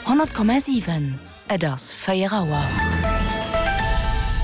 100,7, Et ass 4 Auer.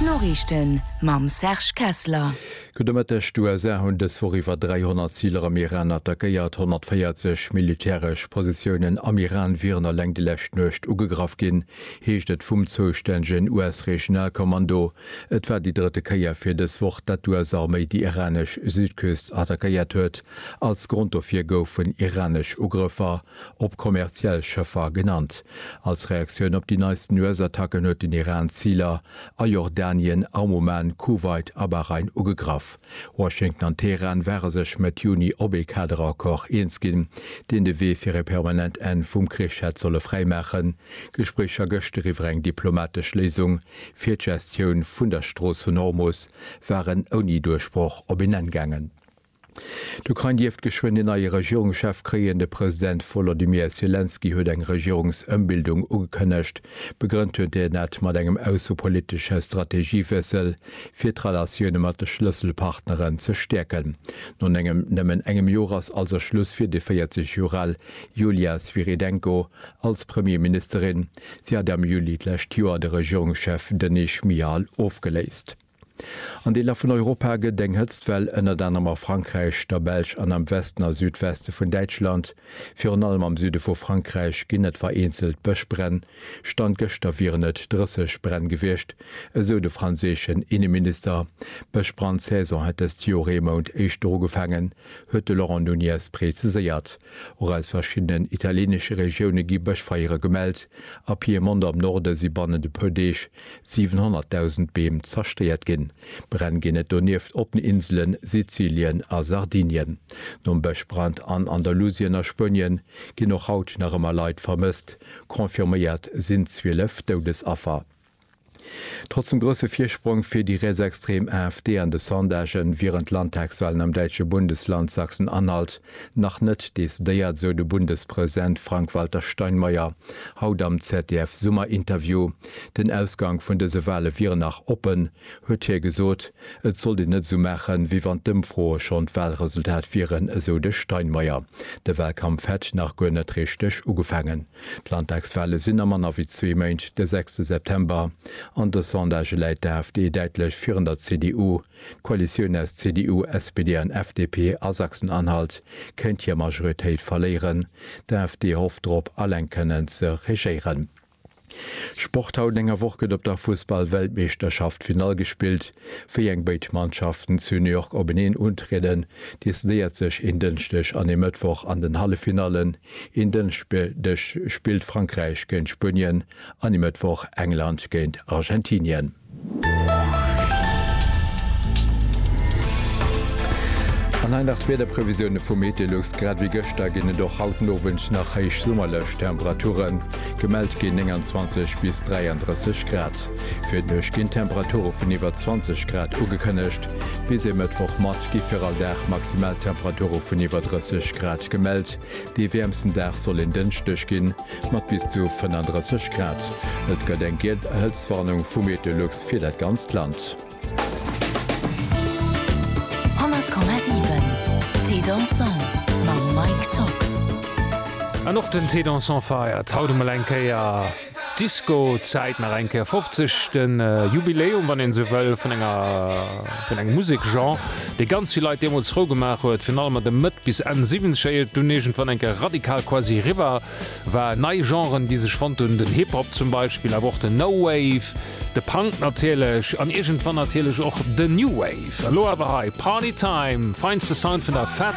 D'Noriichten mam Serge Kessler. Gudde Mëtteg. D'USA hunn dës Woch iwwer 300 Ziler am Iran attackéiert. 140 militäresch Positiounen am Iran wieren eleng déi lescht Nuecht ugegraff ginn, heescht et vum zoustännegen US-Regionalkommando. Et war déi drëtte Kéier fir dës Woch, datt d'US-Arméi déi iranesch Südküst attackéiert huet. Als Grond dofir goufen iranesch Ugrëffer op kommerziell Schëffer genannt. Als Reaktioun op déi neisten US-Attacken huet den Iran Ziler a Jordanien, am Oman, Kuwait a Bahrain ugegraff. Washington an Teheran ware sech Mëtt Juni op ee Kaderaccord eens ginn, deen de Wee fir e permanent Enn vum Krich hätt solle fräimaachen. D'Gespréicher gëscht eriwwer eng diplomatesch Léisung fir d'Gestioun vun der Strooss vun Ormus waren ouni Duerchbroch op een Enn gaangen. D'Ukrain dierft geschwënn een neie Regierungschef kréien. De President Wolodymyr Selenskyj huet eng Regierungsëmbildung ugekënnegt. Begrënnt huet hien dat mat engem aussepolitesche Strategiewiessel, fir d'Relatioune mat de Schlësselpartneren ze stäerken. No nëmmen engem Joer ass also Schluss fir déi 40 Joer al Yulia Svyrydenko als Premierministerin. Si hat am Juli d'lescht Joer de Regierungschef Denis Schmyhal ofgeléist. An Deeler vun Europa gëtt eng Hëtztwell ënnert anerem a Frankräich, der Belsch an am Westen a Südweste vun Däitschland, virun allem am Süde vu Frankräich, ginn et vereenzelt Bëschbränn. Stand gëschter wieren et 30 Bränn gewiescht, esou de franséischen Inneminister. D'Bëschbrand-Saison hätt dëst Joer ee Mount éischter ugefaangen, huet de Laurent Nunez präziséiert. Och aus verschiddenen italieenesche Regioune gi Bëschfeiere gemellt. A Piemont am Norde si bannent e puer Deeg 700.000 Beem zerstéiert ginn. Bränn ginn et donieft op den Inselen Sizilien a Sardinien. Nom Bëschbrand an Andalusien a Spuenien ginn och haut nach ëmmer Leit vermësst, confirméiert sinn 12 Doudesaffer. Trotz dem grousse Virsprong fir déi rietsextrem AfD an de Sondagen wieren d'Landtagswalen am däitsche Bundesland Sachsen-Anhalt nach net decidéiert, sou de Bundespräsent Frank-Walter Steinmeier haut am ZDF-Summerinterview. Den Ausgank vun dëse Wale wieren nach oppen, huet hie gesot. Et sollt een net esou maachen, wéi wann d'Ëmfroe schonn d'Walresultat wieren, esou de Steinmeier. De Walkampf hätt nach guer net richteg ugefaangen. D'Landtagswale sinn a manner wéi zwee Méint, de sechste September, an de Sondagë läit d'AfD däitlech virun der CDU. D'Koalitioun aus CDU, SPD an FDP a Sachsen-Anhalt kéint hir Majoritéit verléieren. D'AfD hofft drop, alleng kënnen ze regéieren. Sport, Haut enger Woch gëtt op der Fussball-Weltmeeschterschaft Finall gespillt. Wéi eng béid Mannschaften zu New York openeen untrieden, decidéiert sech en Dënschdeg an e Mëttwoch an den Halleffinallen. Een Dënschdeg spillt Frankräich géint Spuenien an e Mëttwoch England géint Argentinien. An hei nach d'Wiederprevisioune vu Metelux, Grad ewéi gëschter ginn et och haut den Owend nach héich summerlech Temperaturen. Gemellt ginn 29 bis 33 Grad. Fir d'Nuecht ginn Temperature vun iwwer 20 Grad ugekënnegt. Bis e Mëttwoch mat gi fir all Dag maximal Temperature vun iwwer 30 Grad gemellt. Dee wäermsten Dag soll en Dënschdeg ginn, mat bis zu 35 Grad. Et gëtt eng giel Hëtztwarnung vu Meteolux fir dat ganzt Land. An och den Thé Dansant feiert haut emol eng Kéier. Disco Zäit nach eng Kéier 50, de Jubiläum, wann een esou wëll, vun enger, vun engem Musekgenre, dee ganz vill Leit deemools frou gemaach huet, virun allem an de Mëtt bis Enn Siwwenzeger, ier et dunn iergendwann eng Kéier radikal quasi eriwwer war. Nei Genren, déi sech fonnt hunn, den Hip Hop zum Beispill, awer och den No Wave, de Punk natierlech an iergendwann natierlech och den New Wave. Elo awer hei Party Time, feinste Sound vun der Fett.